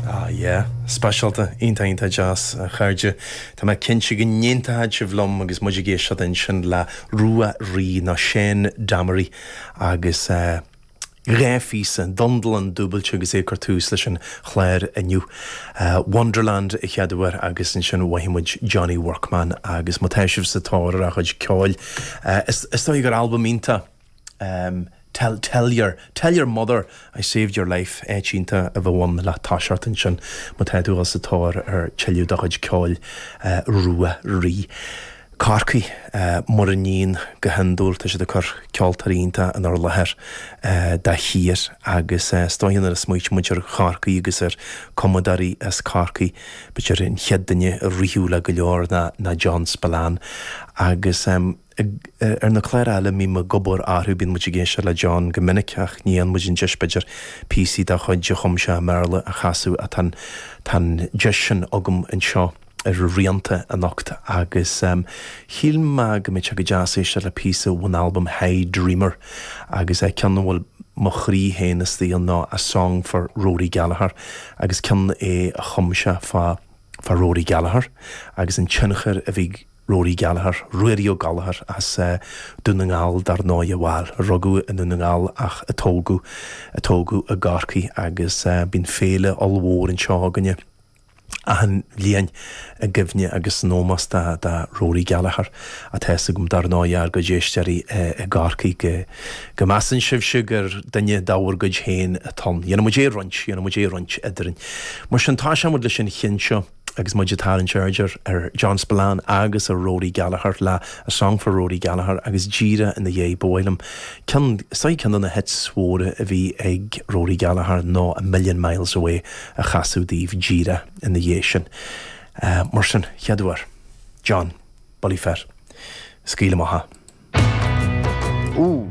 Ah yeah. Speisialta. Iontach, iontach deas, a chairde. Tá mé cinnte go n-aontóidh sibh liom agus muid ag éisteacht ansin le Rua Rí, nó Seán Downey, agus eh dhá phíosa, Dundalán dúbailte agus é ag cur tús leis an chlár inniu. Eh Wonderland a chéaduair agus ansin mhoithigh muid Johnny Workman agus má tá sibh sa tóir ar a chuid ceoil, eh is is dóigh gur albam iontach, em tell tell your tell your mother I saved your life áit iontach a bheadh ann le toiseacht ansin má tá tú sa tóir ar tuilleadh de chuid ceoil eh rua rí Corcaigh eh mar a níonn go hiondúil tá siad ag cur ceoltóirí iontacha inár láthair eh de shíor agus eh is dóigh nuair a smaoitigh muid ar Chorcaigh agus ar chumadóirí as Corcaigh b'fhéidir an chéad duine a rithfeadh le go leor ná ná John Spillane agus em Ag ar na cláir eile a mbím ag obair orthu bíonn muid ag éisteacht le John go minic ach ní fhaigheann muid an deis b'fhéidir píosaí dá chuid a chum sé i mBéarla a chasadh ach tá tá an deis sin agam anseo ar Rianta anocht agus shíl mé go mbeadh sé go deas éisteacht le píosa ón albam Hey Dreamer agus eh ceann a bhfuil mo chroí féin istigh ann ná A Song for Rory Gallagher agus ceann é a chum sé fá fá Rory Gallagher agus an tionchar a bhí Rory Gallagher, Ruairí Ó Gallachóir, as Dún na nGall dar ndóigh bhuel, a rugadh i nDún na nGall ach a tógadh, a tógadh i gCorcaigh agus bíonn féile ollmhór anseo againne achan bhliain i gcuimhne agus in ómós do, do Rory Gallagher ach tá a fhios agam dar ndóigh ár gcuid éisteoirí i gCorcaigh go, go measann sibhse gur duine de bhur gcuid féin atá ann. Déanfaidh muid é a roinnt, déanfaidh muid é a roinnt eadrainn, mar sin toiseoidh muid leis an cheann seo. Agus muid ag tarraingt aird ar John Spillane agus ar Rory Gallagher, le A Song for Rory Gallagher agus díreach ina dhiaidh ba mhaith liom ceann, is dóigh ceann de na hits móra a bhí ag Rory Gallagher ná A Million Miles Away a chasadh daoibh díreach ina dhiaidh sin. Mar sin, chéaduair. John, bulaí fir. Scaoil amach é. Ooh.